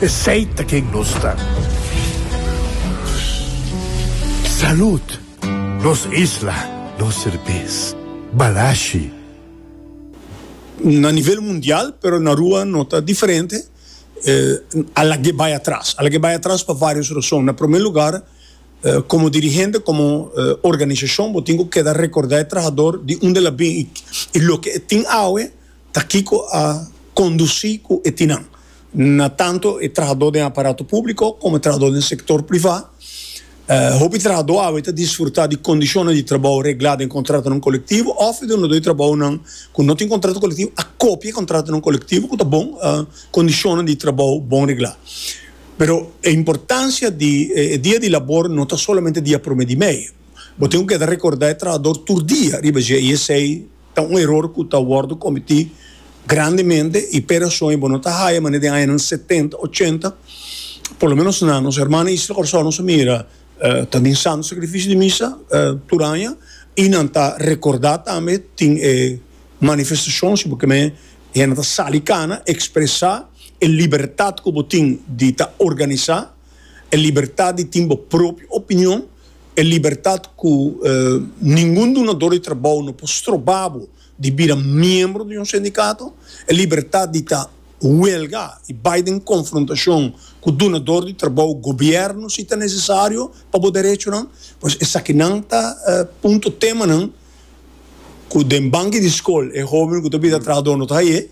Esey ta ken nos ta. Salud! Nos isla, nos serbes. Balashi. Na nivel mundial, pero na rua no ta diferente, a lag'é bai atras. A lag'é bai atras pa vários rason. Na promé lugar, komo dirigente, komo organisashon, bo tin ku keda rekordá e trahador di unda el a bin i loke e tin awe ta kiko a kondusí ku e tin nan. na tanto e trahadó den aparato públiko komo e trahadó den sektor privá. Hopi trahadó awe ta disfrutá di kondishonnan di trabou reglá den kontratonan kolektivo òf e dunadó di trabounan ku no tin kontrato kolektivo a kopia e kontratonan kolektivo ku ta bon kondishonnan di trabou bon reglá. Pero e importansia di e dia di labor no ta solamente dia promé di mei. Bo tin ku keda rekordá e trahador tur dia riba dje i esei. Ta un eror cu ta wordo cometí grandemente y p'e rason y bo no ta haya manera den añanan setenta, ochenta, por lo menos na nos hermana Isla Corsow nos a mira ta bin Santo Sacrificio di Misa tur aña y nan ta recordá tambe tin e manifestacion si bo ke men hende ta sali cana expresa e libertad cu bo tin di ta organisa, e libertad di tin bo propio opinion. e libertat ku ningun dunador di trabou no por stroba bo di bira miembro di un sindikato, e libertat di ta huelga i bai den konfrontashon ku dunador di trabou, gobièrnu si ta nesesario pa bo derechonan. Pues esakinan ta punto, temanan ku den banki di skol e hoben ku ta bira trahador no ta haye.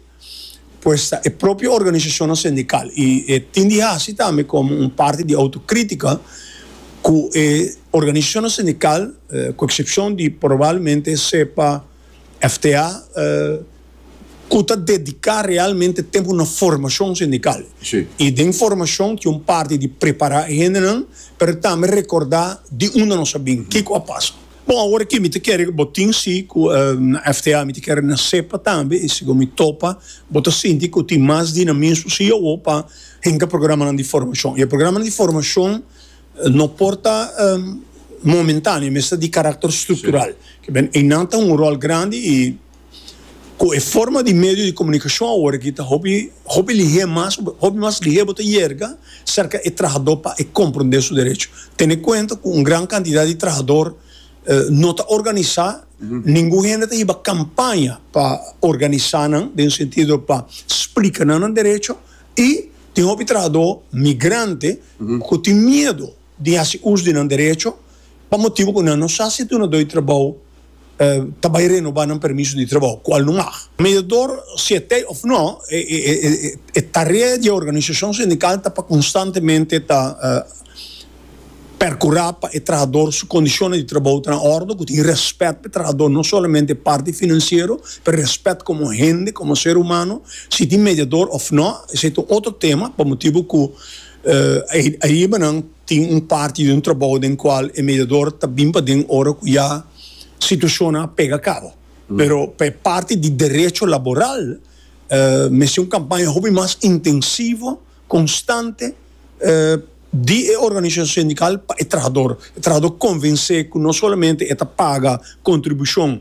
Pues ta e propio organisashonnan sindikal i e tin di hasi tambe komo un parti di outokrítika ku e organisashonnan sindikal, ku eksepshon di probalmente sepa FTA, ku ta dediká realmente tempu na formashon sindikal i den formashon ta un parti di prepará e hendenan pero tambe rekordá di unda nos a bin, kiko a pasa. Bon awor aki mi ta kere ku bo tin si ku FTA mi ta kere na sepa tambe i si bo mi topa bo ta sinti ku tin mas dinamismo si awor pa hinka programanan di formashon. E programanan di formashon no por ta momentaneo mester di karakter struktural. Einan ta hunga un ròl grandi i Cu e forma di medio di comunicacion awor aki ta hopi hopi lihe mas, hopi mas lihe bo ta yerga cerca e trahador pa e comprende su derecho. Tene cuenta cu un gran cantidad di trahador no ta organisa, ningun hende ta hiba campaña pa organisa nan den sentido pa splica nan nan derecho y tin hopi trahador migrante cu tin miedo. di hasi us di nan derecho pa motibu ku nan no sa si dunadó di trabou ta bai renobá nan permiso di trabou, kual no mag. Mediador siet'é òf nò, e tarea di e organisashon sindikal ta pa konstantemente ta perkurá pa e trahador su kondishonnan di trabou ta na òrdu, ku tin rèspèt pa e trahador, no solamente e parti finansiero, pero rèspèt komo hende, komo ser humano. Si tin mediador òf nò, esei ta un otro tema, pa motibu ku. Aribanan tin un parti di un trabou den cual e mediador ta bin paden ora cu ya situacionnan a pega cabo. Pero pa e parti di derecho laboral mester un campaña hopi mas intensivo, constante di e organisacion sindical pa e trahador. E trahador convense cu no solamente e ta paga contribucion